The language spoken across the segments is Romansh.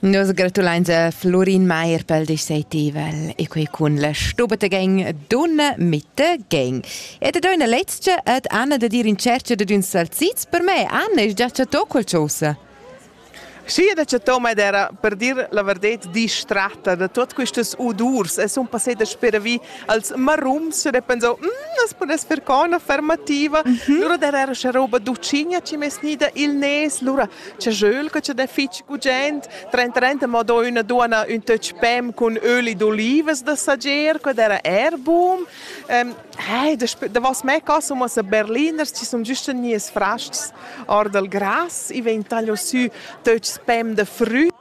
Nus gratulains a Florin Meier pel discetivel e quei cun la stubeta gang Dunna Mitte Gang. E da doina lezcha ed Anna da dir in cerca da d'ün salzits per me. Anna, es già chattò qualchosa? Sì, ed ha chattò, ma ed era, per dir la verdet, distratta da tuot quistas udurs. Es un passé da speravi als marums e pensau, mm, as pudess fer co üna fermativa, mm -hmm. lura der era scha roba ducigna chi m'es gnida il nes, lura c'è Jöl che c'è fich gugent, trent trenta ma do üna duana ün töch pem cun öli d'olivas da sager, que era Airbum. Ähm, hey, da, da was mei caso ma sa Berliners ci sun giusto nies fraschts or dal gras, i vegn taglio sü töchs pem da früt.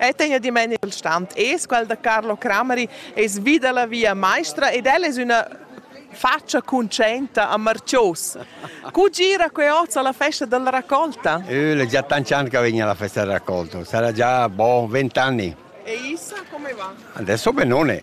E tegna dimeni il stand es quel da Carlo Crameri es vi da la via maestra ed el es üna faccia conscienta a Marcios. Cu gira que oz alla festa della raccolta? Eu l'ho già tanti anni che vegno alla festa della raccolta, sarà già boh, vent'anni. E Isa come va? Adesso benone.